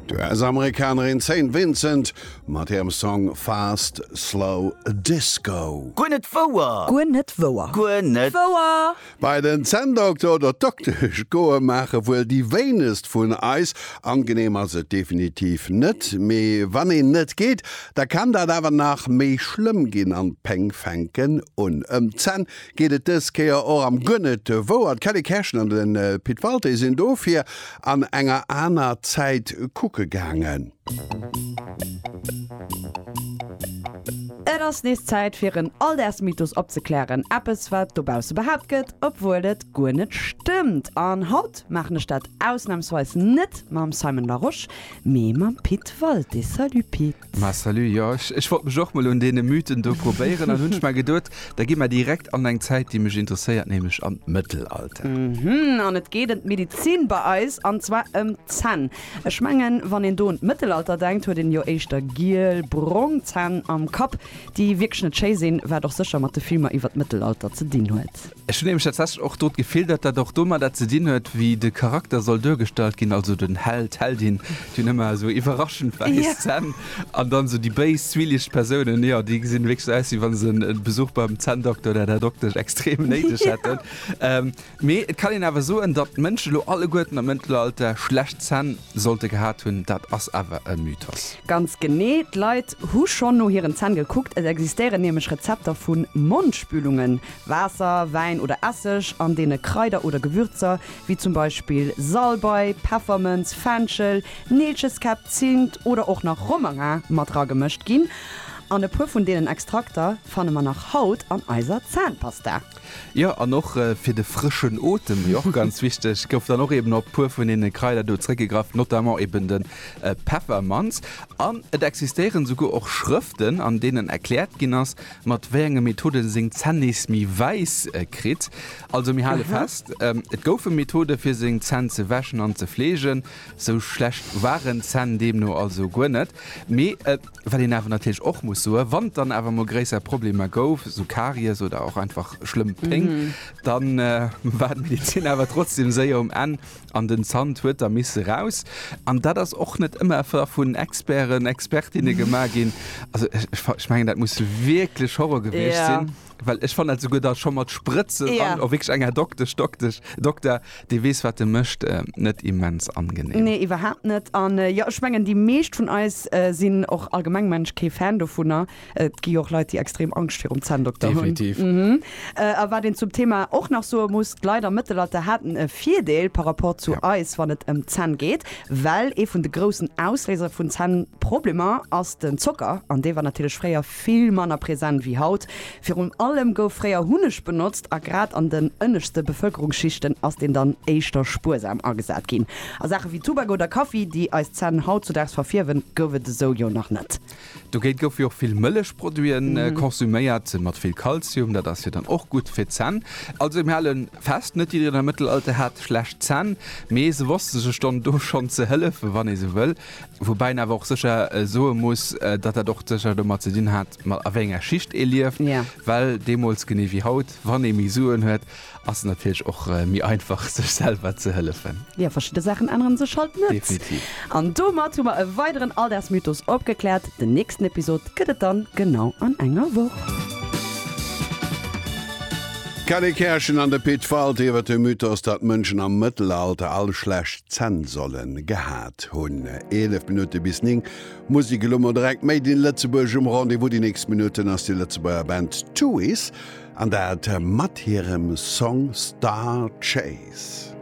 D'US-Amerikanerin Saint Vincent mat hirem Song Fast Slow Disco. Guer net wouer! Guer net wouer! Guer net wouer! Bei den Zänndokter oder d'Doktesch goe maache wuel déi wéinegst vun eis. Angeneem ass et definitiv net, mee wann een net geet, da kann dat awer nach méi schlëmm ginn an d'Péng fänken un ëm d'Zänn geet et dës Kéier och am Guer net wouer. D'Kelly Kerschen an de Pit Walté sinn dofir an enger aner Zäit kucke gaangen. Et ass nees Zäit fir en Alldagsmythos opzeklären, eppes wat dobausse behaapt gëtt, obwuel et guer net stëmmt. An haut maachen ech dat ausnamsweis net mam Simon Larosche, mee mam Pit Walté. Salut Pit! Ma salut, jo ech wollt mech och mol un deene Mythen do probéieren an hunn mer geduet, da gi mer direkt an eng Zäit déi mech interesséiert, nämlech an d'Mëttelalter. Mhm, an et geet em d'Medizin bei eis an zwar em d'Zänn. Ech mengen wann een do un d'Mëttelalter denkt huet een jo éischter giel, brong Zänn am Kapp, déi wierklech net schéi sinn, wat och sécher mat de Filmer iwwer d'Mëttelalter ze dinn huet. Ech hunn nämlech tatsächlech och do d'Gefill, datt dat och domadder ze dinn huet, wéi de Charakter soll duergestallt ginn, also den Held, d'Heldin, déi hunn ëmmer esou iwwerraschend wäiss Zänn, an dann esou déi béis, zwielicht Persounen, jo, déi gesinn wierklech esou aus, wéi wa se en Besuch beim Zänndokter oder der Doktesch extrem néideg hätten. Mee et kann een awer soen, datt d'Mënschen elo alleguerten am Mëttelalter schlecht Zänn sollte gehat hunn, dat ass awer e Mythos. Ganz genee, d'Leit hu schonn no hiren Zänn gekuckt, et existéieren nämlech Rezepter vu Mondspülungen, Waasser, Wäin oder Esseg, an deene Kraider oder Gewürzer, wéi zum Beispill Salbei, Peffermënz, Fenchel, Neelcheskäpp, Zint oder och nach Romarin mat ragemëscht ginn. An e puer vun deenen Extrakter fanne mer nach haut an eiser Zännpasta. Jo, an och fir de frëschen Otem, déi och ganz wichteg, gouf dann och eben op e puer vun deene Kraider do zréckgegraff, notamment eben de Peffermanz. An et existéieren souguer och Schrëften, an deenen erkläert ginn ass, mat wéi enge Methode en seng Zänn nees méi wäiss kritt. Also mir hale fest, et goufe Methode fir seng Zänn ze wäschen an ze fleegen. Sou schlecht waren d'Zänn deemno also guer net. Mee wat een awer natierlech och muss soen, wann et dann awer emol gréisser Problemer gouf, sou Karies oder och einfach schlëmm Péng, da war d'Medezin awer trotzdeem séier um Enn an den Zant huet da misse raus an dat ass och net ëmmer ver vun Experten, Expertinne gemaach ginn. Also ech, ech, fa- ech mengen, dat muss wierklech Horror gewiescht Ja. sinn, well ech fannen dat souguer da scho mat Sprëtzen Ja. an och wierklech enger Doktesch, Doktesch, Dokter, dee weess, wat e mécht, äh, net immens angenehm. Nee, iwwerhaapt net. An äh, jo, ech mengen, déi meescht vun eis äh, sinn och allgemeng, mengen ech, kee Fan dovunner. Et gi och Leit, déi extrem Angscht virum Zänndokter hunn. Definitiv. A wat een zum Thema och nach soe muss, d'Leit am Mëttelalter haten e Virdeel par rapport zu eis, wann et ëm d'Zänn geet, well ee vun de groussen Ausléiser vun Zännproblemer ass den Zocker an dee war natierlech fréier vill manner present wéi haut. Virun allem gouf fréier Hunneg benotzt a grad an den ënneschte Bevëlkerungsschichten ass deen dann éischter spuersam agesat ginn. A Saache wéi Tubak oder Kaffi, déi eis Zänn hautzudaags verfierwen, gouf et esou jo nach net. Dogéint goufe jo och vill Mëllechproduite konsuméiert, mat vill Kalzium, dat ass jo dann och gutt fir d'Zänn. Also mir hale fest, net jiddereen am Mëttelalter hat schlecht Zänn, mee se wosste sech dann do schonn ze hëllefen, wann ee sou wëll. Woubäi een awer och sécher soe muss, datt dat och sécher domat ze dinn hat, a wéi enger Schicht ee lieft, well deemools, genee wéi haut, wann ee méi Suen huet, Ass et natierlech och méi einfach sech selwer ze hëllefen. Jo, verschidde Saachen änneren sech halt net. Definitiv. An domat hu mer e weideren Alldagsmythos opgekläert. Den nächsten Episod gëtt et dann genau an enger Woch. D'Kelly Kerschen an de Pit Falt iwwer de Mythos, datt Mënschen am Mëttelalter all schlecht Zänn solle gehat hunn. 11 Minutte bis 9, Musek elo mol direkt Made in Lëtzebuerg um Rendez-vous. Déi nächst Minutten ass déi Lëtzebuerger Band Tuys An dat mat hirem Song Star Chase.